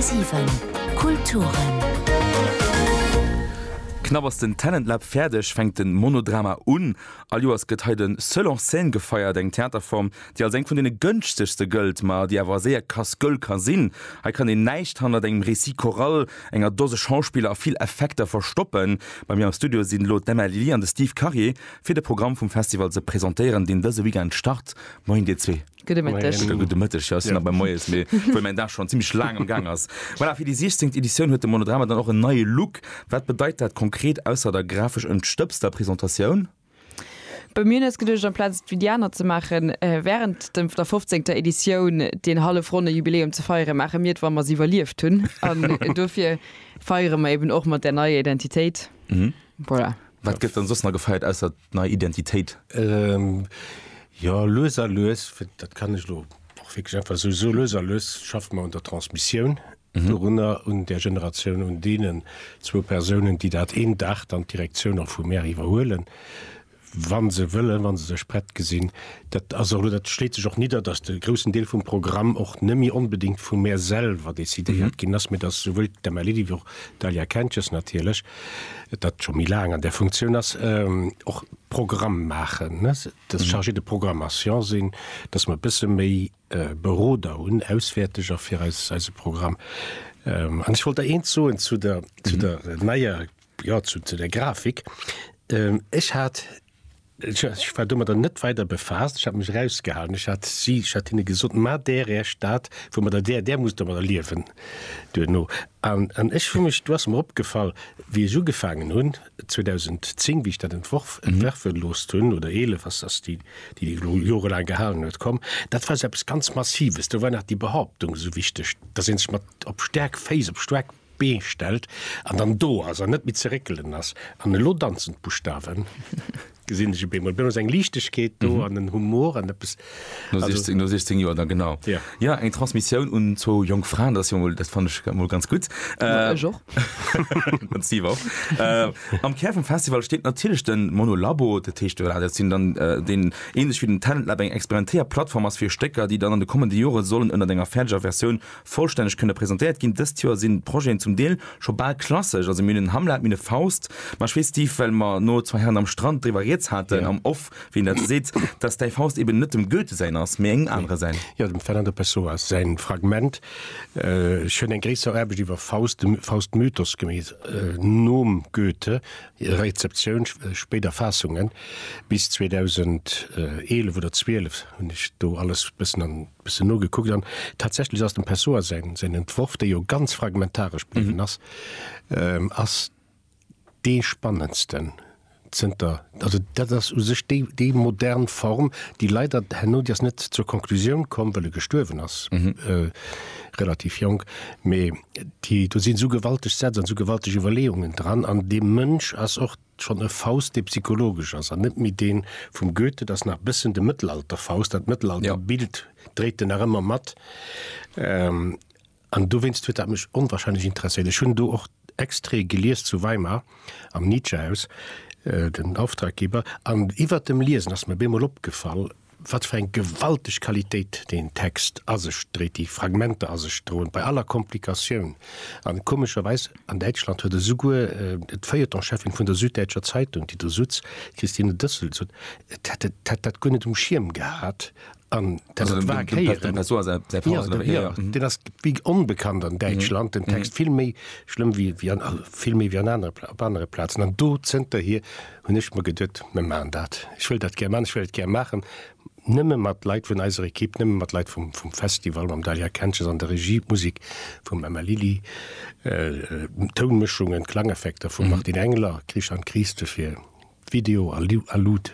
10,7 Kulturen. Knapp ass den Talent Lab fäerdeg, fänkt den Monodrama un. All Joers gëtt hei den Seul en Scène gefeiert, eng Theaterform, déi als eng vun deene gënschtegste gëllt, ma déi awer séier Casse-gueule ka sinn. Hei kann een näischt hannert engem Récit choral, enger Dose Schauspiller a vill Effekter verstoppen. Bei mir am Studio sinn elo d'Emma Lilly an de Steve Karier, fir de Programm vum Festival ze presentéieren, deen dëse Weekend start. Moien, dir zwee. Gudde Mëtteg. Gudde Mëtteg, jo, ech sinn nach beim Moies, mee obwuel mäin Dag schonn zimlech laang am Gaang ass. Voilà, fir déi 16. Editioun huet de Monodrama dann och en neie Look. Wat bedeit dat konkret, ausser der grafesch entstëbster Presentatioun? Bei mir nees geduecht, amplaz et wéi déi aner ze maachen, wärend dem der 15. Editioun deen hallef ronne Jubiläum ze feieren, maache mir et, wa mer se iwwerlieft hunn. An dofir feiere mer eben och mat där neier Identitéit. Voilà. Wat gëtt dann soss nach gefeiert ausser d'nei Identitéit? Jo, lues a lues, dat kann ech elo och wierklech einfach esou soen, lues a lues schaffe mer un der Transmissioun dorunner, un där Generatioun, un deenen zwou Persounen, déi dat een Dag dann d'Direktioun och vum Maire iwwerhuelen, wa se wëllen, wa se sech prett gesinn. Dat ass elo, dat schléit sech och nidder, datt de groussen Deel vum Programm och net méi onbedéngt vum Maire selwer decidéiert ginn ass, mee datt souwuel d'Emma Ledy wéi och d'Dalia Kentges natierlech dat scho méi laang an der Funktioun ass, och Programm maachen, ne, dass ech chargé de programmation sinn, dass mer e bësse méi Beroder hunn, Auswäerteger fir eis, eise Programm. An ech wollt der eent soen zu der, zu der neier, jo, zu, zu der Grafik. Ech hat Ech war domadder net weider befaasst. Ech hat mech erausgehalen. Ech hat si, ech hat hinne gesot, Maacht Är Är Stad, wou mer der, där, där musst Der mer der liewen duerno. An, an ech hu mech, do ass mer opgefall, wéi ech ugefaangen hunn 2010, wéi ech dat entworf, entwerfen gelooss hunn, oder 11, ass, ass déi, déi déi elo jorelaang gehalen huet, komm, dat war esou eppes ganz Massives. Do war nach déi Behauptung esou wichteg, dass ee sech mat, op staark Féiss, op staark. Bee stellt an dann do ass an net méi ze réckelen ass. An elo danzen d'Buschtawen, gesinn ech op eemol. Blo ass eng Liichtegkeet do an en Humor an eppes, No also. 16, no 16 Joer da, genau. Ja. Ja, eng Transmissioun un zwou jonk Fraen, dat ass jo emol, dat fannen ech emol ganz gutt. Ja, ech och. Den Steve och. Am Kär vum Festival steet natierlech de Monolabo, dat heescht, voilà, dat sinn dann, deen ähnlech wéi den Talent Lab eng experimentéier Plattform ass fir Stécker, déi dann an de kommende Jore sollen ënnert enger fäerdeger Versioun Vollstänneg kënne presentéiert ginn. Dëst Joer sinn d'Projeten zum Deel scho bal klassesch. Also mir hunn en Hamlet, mir hunn e Faust. Ma ech weess, Steve, well mer no Zwei Herren am Strand driwwer rieds haten am Off, wéi een dat esou seet, dass däi Faust eben net dem Goethe säin ass, mee engem anere säin. Jo, dem Fernand de Pessoa säin Fragment. Ech hunn eng gréisser Aarbecht iwwer Faust, de Faust-Mythos gemeet, nom Goethe, Rezeptioun, spéider Faassungen, bis 2011 oder 12 hunn ech do alles bëssen an. Bëssen nogekuckt an tatsächlech ass dem Pessoa säin säin Entworf, dee jo ganz fragmentaresch bliwwen ass, ass dee spannendsten zënter, also dat ass u sech déi déi modern Form, déi leider, herno, déi ass net zur Konklusioun komm, well e gestuerwen ass, relativ jonk, mee déi do sinn esou gewalteg Sätz an esou gewalteg Iwwerleeungen dran an dee Mënsch ass och, Schonn e Faust, dee psychologesch ass an net méi dee vum Goethe, dat ass nach e bëssen de Mëttelalter-Faust, dat Mëttelalter-Bild dréit en nach ëmmer mat. An dowéinst huet dat mech onwahrscheinlech interesséiert. Ech hunn do och Extraite gelies zu Weimar am Nietzsche-Haus, den Auftraggeber, an iwwert dem Liesen ass mir op eemol opgefall, Wat fir eng gewalteg Qualitéit deen Text a sech dréit, déi Fragmenter a sech droen, bei aller Komplikatioun. An komescherweis, an Däitschland huet esouguer d'Feuilleton-Cheffin vun der Süddeutscher Zeitung, déi do sutz, d'Christine Dössel, gesot, et hätt dat guer net um Schierm gehat an dat et war d'Héieren. Deen ass wéi onbekannt an Däitschland, den Text, vill méi schlëmm wéi, vill méi wéi an anere, op anere Plazen. An do zënterhier. hunn ech mer geduet, mir maachen dat. Ech wëll dat gär maachen, ech wëll et gär maachen, nëmme mat Leit vun eiser Ekipp, nëmme mat Leit vum, vum Festival, mam Dalia Kentges an der Regie, d'Musik vum Emma Lilly, d'Tounmëschungen, d'Klangeffekter vum Martin Engler, Christian Christe fir Video a Lu, a Lut.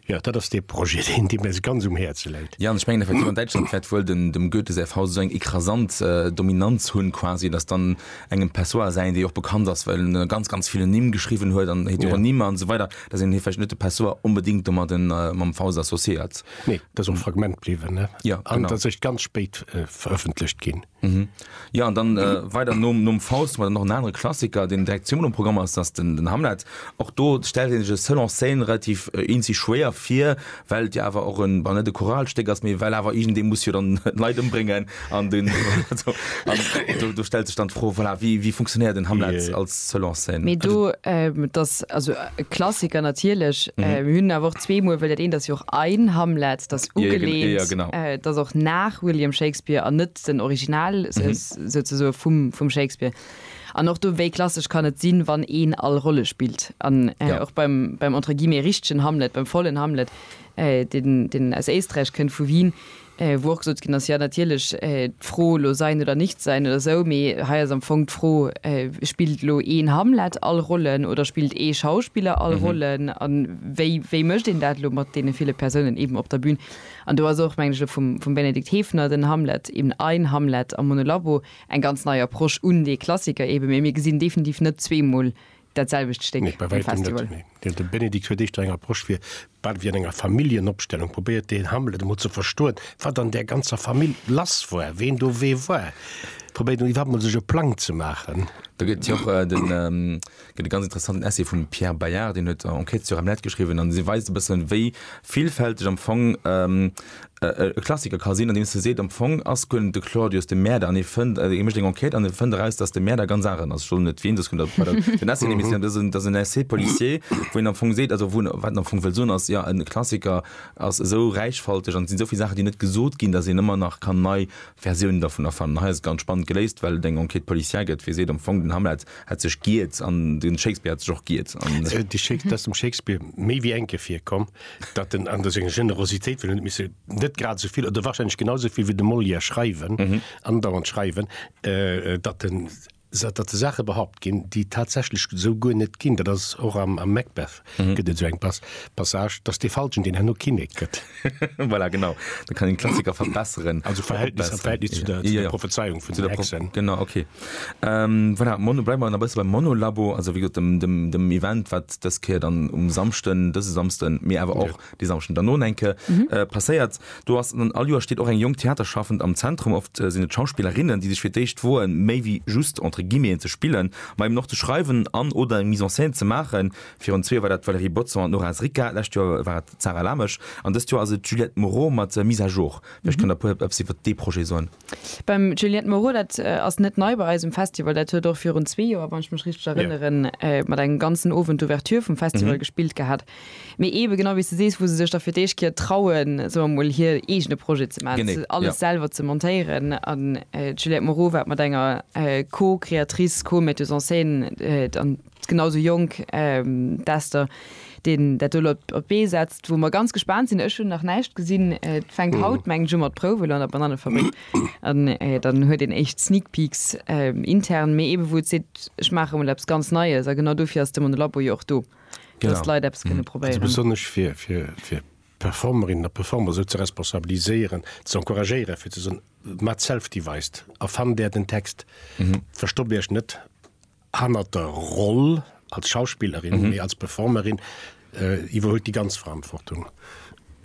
Jo, dat ass dee Projet, deen, dee mir esou ganz um Häerze läit. Jo, an ech mengen effectivement, Däitschland wäert wuel dem, dem Goethe säi Faust esou eng ekrasant Dominanz hunn quasi, dass dann engem Pessoa säin, dee och bekannt ass, well en ganz, ganz vill Nimm geschriwwen huet an Heteronymer an esou weider, dass een hie vläicht net de Pessoa onbedéngt domadden, mam Faust associéiert. Nee, dat ass och e Fragment bliwwen, ne? Jo, genau. An et ass eréischt ganz spéit verëffentlecht ginn. Mhm. Ja an dann äh, weider nom, nom Faust war noch en anere Klassiker, den direkt Simon um Programm ass ass den, den Hamlet. Och do stellt den sech Selon Scène relativ äh, in sich schwéer fir, well ja awer och en war net de Choralsteck ass méi well awer irgend de muss jo dann Leit ëmbringen an den also, an, do, do stellt sech dann d'Fro voilà, wie, wie funktionéiert den Hamlet yeah. als Selon Scène? Mee do, ähm, das, also, E Klassiker natierlech. Mir hunn awer och zwee Muer, well dat eent ass jo och ein Hamlet, dat ugelehnt, dat ass och nach William Shakespeare an net den Original souzesoe vum Shakespeare. An och do, wéi klassesch kann et sinn, wann een all Rolle spillt? An och beim entre guillemets richtegen Hamlet, beim vollen Hamlet, deen aus Éisträich kënnt, vu Wien, wou och gesot ginn ass, jo natierlech d'Fro elo sein oder nicht sein oder esou, mee hei ass am Fong d'Fro, spillt elo een Hamlet all Rollen oder spillt ee Schauspiller all Rollen a wéi, wéi mécht een dat elo mat deene ville Persounen eeben op der Bün? An do ass och, mengen ech, elo vum, vum Benedikt Hefner den Hamlet, eben ein Hamlet am Monolabo, eng ganz nei Approche un dee Klassiker eeben, mee mir gesinn definitiv net zweemol Dat selwecht Stéck, nee, bei wäitem net, nee. De Benedikt huet éischter eng Approche fir, bal wéi an enger Familljenopstellung, probéiert den Hamlet emol ze verstoen, wat an där ganzer Famill lass war, ween do wee war, probéiert en iwwerhaapt emol sech e Plang ze maachen. Do gëtt et jo och den, gëtt e ganz interessanten Essai vum Pierre Bayard, deen huet Enquêtes sur Hamlet geschriwwen, an dee weist e bëssen, wéi villfälteg am Fong e Klassiker ka sinn, andeems e seet, am Fong ass guer net de Claudius de Mäerder an ee fënnt, ee mécht eng Enquête an e fënnt eraus, datt de Mäerder ganz aneren ass. Ech soen net wien, soss kënnt der bei der den Essay nimissen. Dat ass en, dat ass en Essai policier, wou een am Fong seet, also wou en, wat en am Fong wëll soen ass, jo, e Klassiker ass esou räichfalteg an et sinn esou vill Saachen, déi net gesot ginn, datt een ëmmer nach kann nei Versiounen dervun erfannen. An hei ass et ganz spannend geléist, well et eng Enquête policière gëtt, wou ee seet, am Fong, den Hamlet hätt sech giert an de Shakespeare hätt sech och giert an. Dee Shakes, dat ass dem Shakespeare méi wéi enke virkomm, Datt en an der senger Generositéit, well en huet misse net grad esou vill oder warscheinlech genau esou vill wéi de Molière schreiwen, andauernd schreiwen, datt en, datt de Saache behaupt ginn, déi et tatsächlech esou guer net ginn, dat ass och am Macbeth gëtt et esou eng Passage, datt dee Falschen, deen herno Kinnek gëtt. Voilà, genau, da kann een d'Klassiker verbesseren. Also Verhältnis, am Verhältnis zu der Prophezeiung vun den Hexen. Genau, okay. Voilà, Mono, bleiwe mer nach e bësse beim Monolabo. Also wéi gesot, dem, dem, dem Event, wat dës Kéier dann um Samschden, dëse Samschden, mee awer och dee Samschden derno, enke passéiert. Do ass, an all Joer steet och eng jonk Theaterschaffend am Zentrum. Oft sinn et Schauspillerinnen, déi sech fir d'éischt woen, méi wéi just, entre guillemeten, ze spillen, ma eben och ze schreiwen an, oder eng Mise en scène ze maachen. Virun zwee Joer war dat d'Valérie Bodson an d'Nora Zricka, d'lescht Joer war et d'Sarah Lamesch an dëst Joer ass et d'Juliette Moreau mat Mise à jour. Vläicht kënnt Der e puer eppes iwwert dee Projet soen. Beim Juliette Moreau, dat ass net nei bei eis um Festival, dat huet och virun zwee Joer, wann ech mech richteg erënneren, mat engem ganzen Owend d'Ouverture vum Festival gespillt gehat. Mee eebe genau wéi s de sees, wou se sech da fir d'éischt Kéier trauen, soe mer emol, hir eegene Projet ze maachen, se alles selwer ze montéieren. An d'Juliette Moreau war et mat enger Co-Creatrice, Co-Metteuse en scène, Genau esou jonk d'Esther, déi dat do elo op d'Bee setzt, wou mer ganz gespaant sinn. Ech hunn nach näischt gesinn. Et fänkt haut, mengen ech, u mat Prouwen an der Banannefabrik. An dann huet een éischt Sneak Peeks intern. Mee eebe wou et seet, ech maache mol eppes ganz Neies. A genau dofir ass de Monolabo jo och do, dass d'Leit eppes kënne probéieren. Genau. Also besonnesch fir Performerinnen a Performer esou ze responsabiliséieren, ze encouragéieren, fir ze soen, Maacht Self-Devised, erfannt Är den Text, verstoppt Iech net Hannert der Roll als Schauspillerin, mhm. als Performerin äh, iwwerholt die ganz Verantwortung.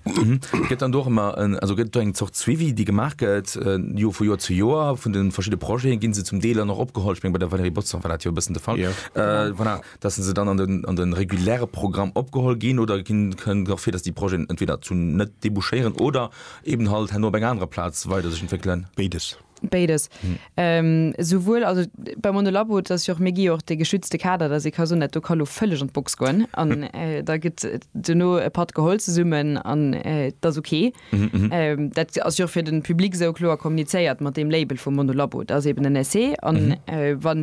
Mhm. Gëtt dann doch immer en, also gëtt eng Zocht Zwivi, déi gemaach gëtt äh, Jo vu Joer zu Joer vun den verschiedene Projeten ginn se zum Deeler noch opgeholt bei der Valerie Botzer war dat jo bëssen de Fall ja. äh, voilà, dat se dann an den, an den reguläre Programm opgeholl ginn oder ginn kënnen gach fir, dats die Projeten entweder zu net debouchéieren oder eben halt hen op eng andere Platz weider sech entwickeln. Beides. Béides. Souwuel, also beim Monolabo, dat ass jo och, mir gi jo och de geschützte Kader, dass ee ka soen, dat do ka elo vëlleg an d'Box goen an da gëtt duerno e Patt geholl zesummen an et ass ok. Dat ass jo och fir de Public esou kloer kommunizéiert mat deem Label vum Monolabo. Dat ass eeben en Essai an wa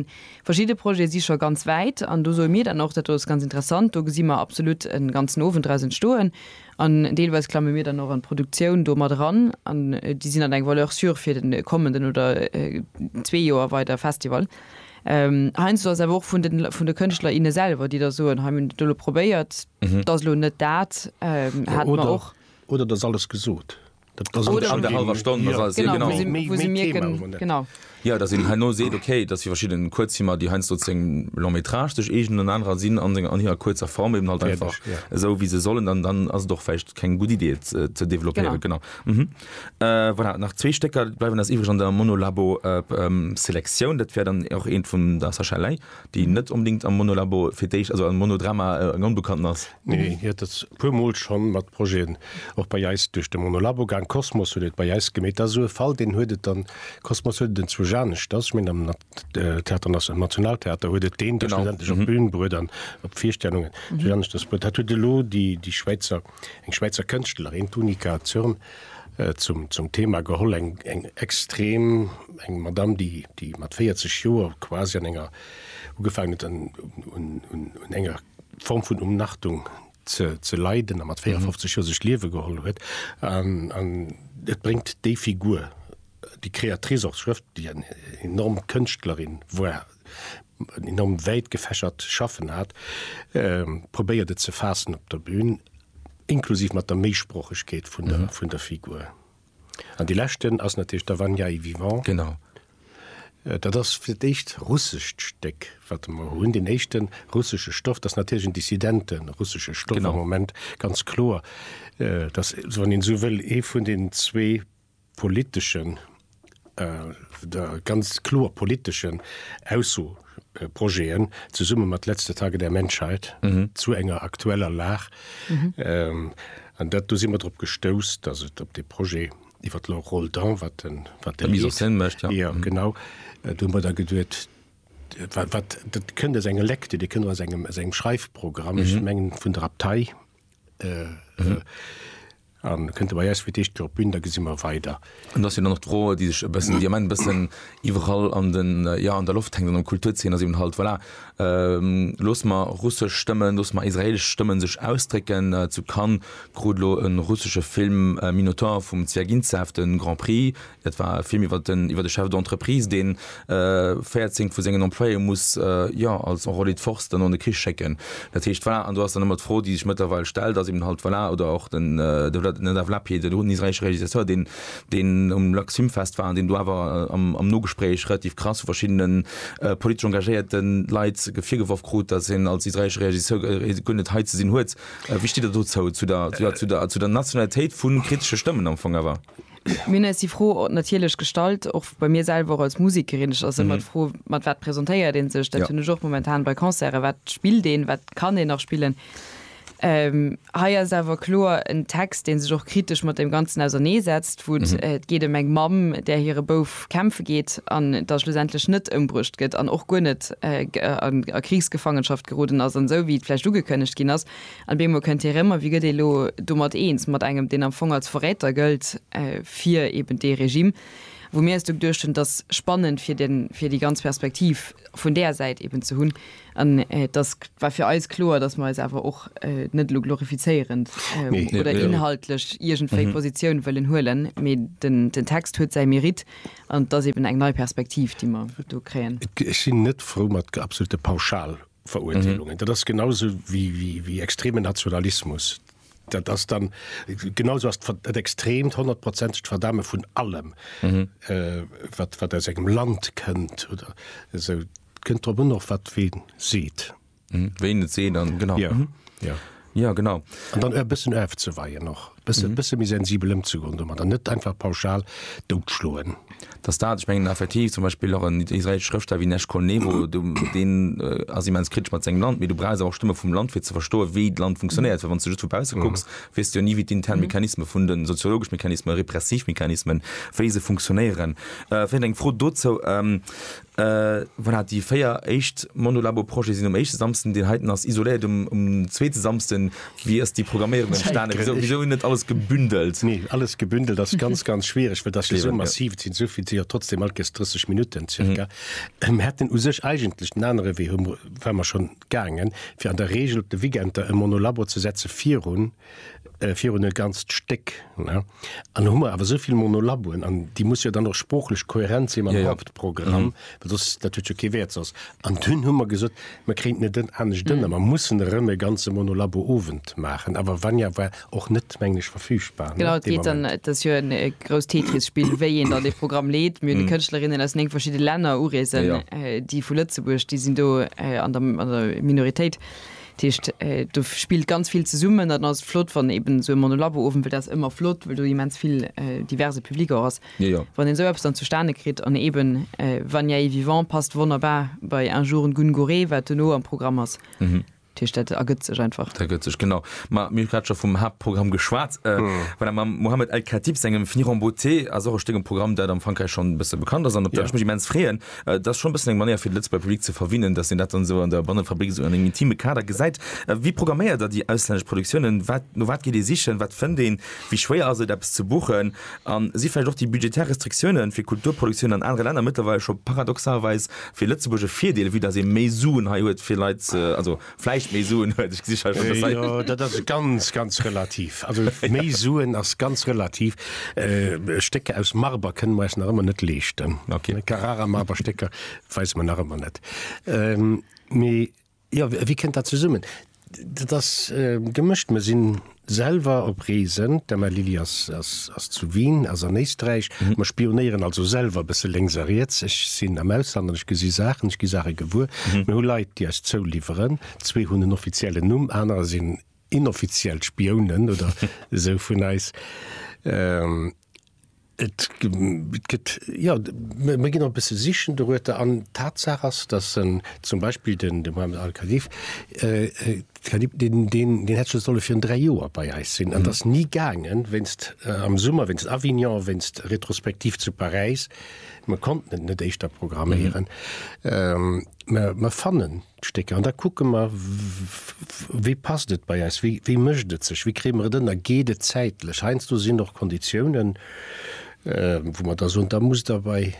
verschidde Projete si scho ganz wäit an do soe mir dann och, dat do ass ganz interessant, do gesi mer absolut e ganzen Owend draus entstoen An deelweis klamme mir dann och an d'Produktioun do mat eran an déi sinn dann eng Valeur sûre fir den kommenden oder zwee Joer weider Festival. Heiansdo ass et awer och vun de vun de Kënschtler, inne selwer, déi da soen, hei mir hunn et elo probéiert, et ass elo net dat. Haten mer och. Oder et ass alles gesot. Jo, datt een herno seet, okay, datt fir verschidde Kuerzfilmer, déi heiansdo seng Long métrage sech eegnen an anerer sinn an senger, an hirer kuerzer Form eben halt einfach esou wéi se sollen, dann, dann ass et och vläicht keng gutt Idee et ze développéieren. Genau. Voilà, nach zwee Stécker bleiwen eis iwwreg an der Monolabo-Selektioun. Dat wär dann och eent vum der Sacha Ley. Déi net onbedéngt am Monolabo fir d'éischt, also am Monodrama, eng Onbekannten ass. Nee, hien ass e puer Mol scho mat Projeten och bei eis duerch de Monolabo gaang. Kosmos huet et bei eis gemeet. Dat ass esou e Fall, deen huet et dann, Kosmos huet et enzwousch aneschters, ech mengen am Theater Nas, am Nationaltheater huet et deen da schlussendlech op d'Bün bruet an op Virstellungen, enzwousch aneschters bruet. Dat huet elo déi, déi Schwäizer. Eng Schwäizer Kënschtlerin, d'Unika Zürn, zum Thema geholl, eng extrem, eng Madamm, déi mat 40 Joer quasi an enger, ugefaangen huet un enger Form vun Umnachtung ze leiden a mat 54 Joer sech d'Liewe geholl huet. An et bréngt déi Figur, déi Créatrice, och d'Schrëft, déi eng enorm Kënschtlerin war, enorm wäit gefächert Schaffen hat, ähm, probéiert et ze faassen op der Bühn, inklusiv mat der Méisproochegkeet vun der, vun der Figur. An déi leschten ass natierlech Der Vanja est vivant. Genau. Dat ass fir d'éischt russescht Stéck, wat de mer hunn, deen éischten russesche Stoff. Dat ass natierlech en dissidenten russesche Stoff am Moment, ganz kloer. Dat ass, wann een esou wëll, ee vun den zwee politeschen, ganz kloer politeschen Aussoprojeten, zesumme mat Letzte Tage der Menschheit, zu enger aktueller Lag. An dat, do si mer drop gestouss, dass et op dee Projet iwwer d'Laure Roldan, wat den, wat deen heescht, jo, genau, do hu mer da geduet, wat, wat, dat kënnt aus engem Lecture, dee kënnt aus engem, aus engem Schreifprogramm, ech mengen vun der Abtei, An kënnt e bei eis fir d'éischt Kéier op d'Bün, da gesi mer weider. An da sinn dann och d'Fro, déi sech e bëssen, déi am Ende e bëssen iwwerall an den, jo, an der Loft hänkt an der Kulturzeen, ass eben halt, voilà, loosse mer russesch Stëmmen, loosse mer israelesch Stëmmen sech ausdrécken. Zu Cannes krut elo e russesche Film Minotaur vum Zwiagintsev de Grand Prix, Et war e Film iwwer den iwwer de Chef d'entreprise, dee 14 vu sengen Employéë muss, jo, als enrôlé de force dann an de Krich schécken. Dat heescht, voilà, an do ass dann ëmmer d'Fro, déi sech mëttlerweil stellt, ass eben halt, voilà, oder och den Nadav Lapid, den un israeelesche Realisateur, deen deen um Lux Film Fest war an deen do awer am am Nogespréich relativ krass vu verschiddene politesch engagéierte Leit virgeworf krut, datt en als israeelesche Realiseur guer net hei ze sinn huet. Wéi stitt Der dozou, zu der, jo, zu der, zu der Nationalitéit vu kritesche Stëmmen am Fong awer? Mir hunn eis déi Fro natierlech gestallt, och bei mir selwer, och als Musekerin. Et ass ëmmer d'Fro, mat wat presentéiert ee sech? Dat hunn ech och momentan bei Concerten, Wat spillt een? Wat kann een nach spillen? Hei ass awer kloer en Text, dee sech och kritesch mat deem Ganzen ausernee setzt, wou et geet ëm eng Mamm, där hire Bouf kämpfe geet an da schlussendlech net ëmbruecht gëtt an och guer net a Krichsgefaangenschaft geroden ass. An esou wéi et vläicht ugekënnegt ginn ass, An bemol kënnt hie rëm a wie gëtt ee lo domat eens, mat engem, deen am Fong als Verräter gëllt fir eben dee Regime. Wou mir eis do geduecht hunn, et ass spannend fir den, fir déi ganz Perspektiv vun där Säit eben ze hunn. An et ass, war fir eis kloer, datt mer eis awer och net elo glorifizéierend oder inhaltlech iergendwéi Positioun wëllen huelen, mee den, den Text huet säi Mérite an et ass eben eng nei Perspektiv, déi mer do kréien. Ech sinn net frou mat absolute Pauschal-. Veruerteelungen. Dat ass genau esou wéi extremen Nationalismus. Dat ass dann genau esou ass dat extremt honnertprozentegt Verdame vun allem, wat aus engem Land kënnt oder esou. Kënnt drop un och, wat wee seet. Ween et seet an, genau. Jo. Ja, genau. An dann e bëssen ofzeweien och, e bësse, e bësse méi sensibel ëmzegoen domat an net einfach pauschal doutschloen. dass dat, ech mengen effektiv zum Beispill och en israeelesche Schrëftsteller wéi Nesh Kolnevo, du, deen äh, ass immens kritesch mat sengem Land, mee du brauchs awer och Stëmme vum Land, fir ze verstoen, wéi d'Land funktionéiert, well wann du just vu bausse kucks, weess du jo ni, wéi d'intern Mechanisme vun den soziologesch Mechanismen, repressiv Mechanismen, wéi se funktionéieren. Äh, vläicht eng Fro dozou, ähm, Voilà, déi véier éischt Monolabo-Projete sinn um éischte Samsden, deen heiten ass isoléiert um zweete Samsden. Wéi ass déi Programméierung entstanen? Wisou net alles gebündelt? Nee, alles gebündelt ass ganz, ganz schwiereg, well dat ass jo esou massiv. Et sinn esou vill, et sinn jo trotzdeem alt Gäscht 30 Minutten zirka. Mir hätten u sech eigentlech den anere Wee, hu mer, ware mer schonn gaangen, fir an der Reegel op de Weekender e Monolabo ze setze virun, Äh, virun e ganzt Stéck, ne? An do hu mer awer esou vill Monolaboen, an déi musse jo dann och sproochlech kohärent sinn mam Ja, ja. Hauptprogramm, well soss, dat huet jo kee Wäert soss. An dunn hu mer gesot, mer kréinten et net anescht ënner, mer mussen erëm e ganze Monolabo-Owend maachen. Awer Vanja war och net, mengen ech, verfügbar, ne, Genau, et dee geet dann, Moment. et ass jo en e grousst Tetris-Spill, wéi een dann dee Programm leet. Mir hunn déi Kënschtlerinnen aus néng verschidde Länner ureesen, Ja, ja. äh, déi vu Lëtzebuerg, déi sinn do äh, an der, an der Minoritéit. Dat heescht, do spillt ganz vill zesummen. An dann ass et flott, wann eben esou e Monolabo-Owend, well dat ass ëmmer flott, well do immens vill diverse Public och ass, wann een esou eppes dann zustane kritt. An eben Vanier est vivant passt wonnerbar bei Un jour un Gungurê, wat duerno am Programm ass. Dat heescht, dat ergëtt sech einfach. Dat ergëtt sech, genau. Mä mir hu grad scho vum Haaptprogramm geschwat. Voilà, mam Mohamed El-Khatib sengem Finir en beauté ass och e Stéck um Programm, dat am Frankräich schonn e bësse bekannt ass an op dat ech mech immens freeën. Et ass schonn e bëssen eng Manéier fir de Lëtzebuerger Public ze verwinnen, datt een dat dann esou an der Bannefabrik esou an engem intime Kader gesäit. Wéi programméiert der déi auslännesch Produktiounen? Wat, no wat geet ee sichen? Wat fënnt een? Wéi schwéier ass et eppes ze buchen? An si vläicht och déi budgetär Restriktiounen fir Kulturproduktiounen an anere Länner mëttlerweil scho paradoxalweis fir Lëtzebuerg e Virdeel, vue datt ee méi Suen hei huet fir Leit ze, also Vläicht méi Suen huet, ech gesi schonn dass hei. Jo, dat ass ganz, ganz relativ. Also méi Suen ass ganz relativ. Stécker aus Marber kënne mer eis nach ëmmer net leeschten. Okay. Carrara-Marber-Stécker weise mer nach ëmmer net. Mee jo, wéi kënnt dat zesummen? Dat ass gemëscht. Mer sinn Selwer op Reesen, d'Emma Lilly ass zu Wien, ass an Éisträich. Mer spionéieren also selwer e bësse lénks a riets. Ech sinn am Ausland an ech gesi Saachen, ech gi Saache gewuer. Mir hu Leit, déi eis zouliwweren. Zwee hunn en offiziellen Numm, anerer sinn inoffiziell Spiounen oder esou vun eis. Et gëtt, jo, mir ginn och e bësse sichen dorueter. An d'Tatsaach ass, datt en zum Beispill den Mohammed al-Khalif, Khalib, deen, deen, deen hätt scho solle virun dräi Joer bei eis sinn an ass ni gaangen, wéinst am Summer, wéinst Avignon, wéinst Retrospektiv zu Paräis. Mir konnten et net éischter programméieren. Mä mir fannen. D'Stécker an da kucke mer, wéi passt et bei eis, wéi mécht et sech, wéi kréie mer et ënner, geet et zäitlech. Heiansdo sinn och Konditiounen, wou mer da soen, da musst Der bei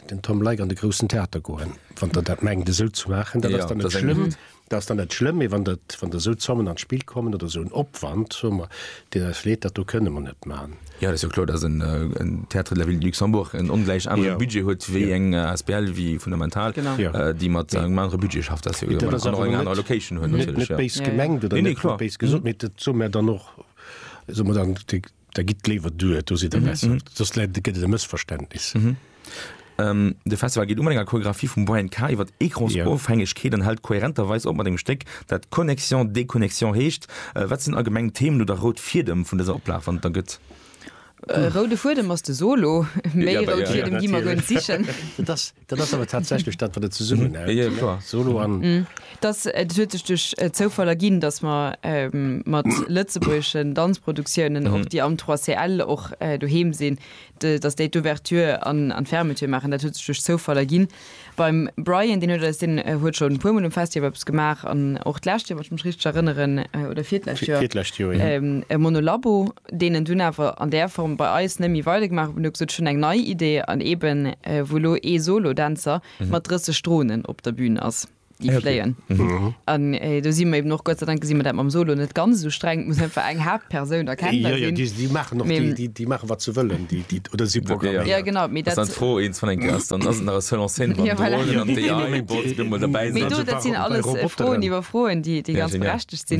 den Tom Leick an de Groussen Theater goen, wann Der dat mengt esou ze maachen. Dat ass dann net schlëmm, dat ass dann net schlëmm, mee wann dat, wann da esou Zommen an d'Spill kommen oder esou en Opwand, soe mer, deen eis leed, dat do kënne mer net maachen. Jo, dat ass jo kloer, datt en Théâtre de la ville de Luxembourg en ongläich anere Budget huet wéi eng asbl wéi Fundamental, déi mat engem anere Budget schafft. Dat ass jo an och eng aner Location hunn natierlech, jo. Net béis gemengt oder net béis gesot, mee dat soe mer dann och, soe mer dann, da gitt léiwer duer, do sidd Der besser. Soss gëtt et e Mëssverständnis. De Festival geet u mat enger Choreographie vum Brian K. iwwer Ecransofhängegkeet an hält kohärenterweis op mat engem Stéck, dat Connexion, Déconnexion heescht. Wat sinn allgemeng d'Themen oder rout Fiedem vun dëser Oplag, wann et der gëtt? E roude Fuedem ass de Solo. Méi rout Fiedem gi mer guer net sichen. Dat ass awer tatsächlech dat, wat et zesummenhält, Solo an. Et huet sech duerch Zoufall erginn, datt mer mat lëtzebuergeschen Danzproduktiounen, och déi am 3CL och doheem sinn, Dass déi d'Ouverture an d'Fermeture maachen, dat huet sech duerch Zoufall erginn. Beim Brian, deen huet eis, deen huet schonn e puer Mol um Festival eppes gemaach an och d'lescht Joer, wann ech mech richteg erënneren, oder virtdlescht Joer, virtdlescht Joer, jo, e Monolabo, deen en dunn awer an där Form bei eis nëmmi weidergemaach huet, an huet gesot, ech hunn eng nei Idee, an eben wou elo ee Solo-Dänzer mat 30 Dronen op der Bühn ass. déi fléien. An do si mer eben och, Gott sei Dank gesi mer dat mam Solo net ganz esou streng, et muss einfach eng Haaptpersoun erkennbar sinn. Jo, jo, déi maachen och, déi maache wat se wëllen, déi, déi, oder si programméiert. Jo, genau, mee dat. Ass dann d'Fro, eent vun enke ass dann, ass et nach e Seul en Scène beim Dronen an d'AI wollt op eemol dobäi sinn? Mee do, dat sinn alles Froen iwwer Froen, déi ganz berechtegt sinn.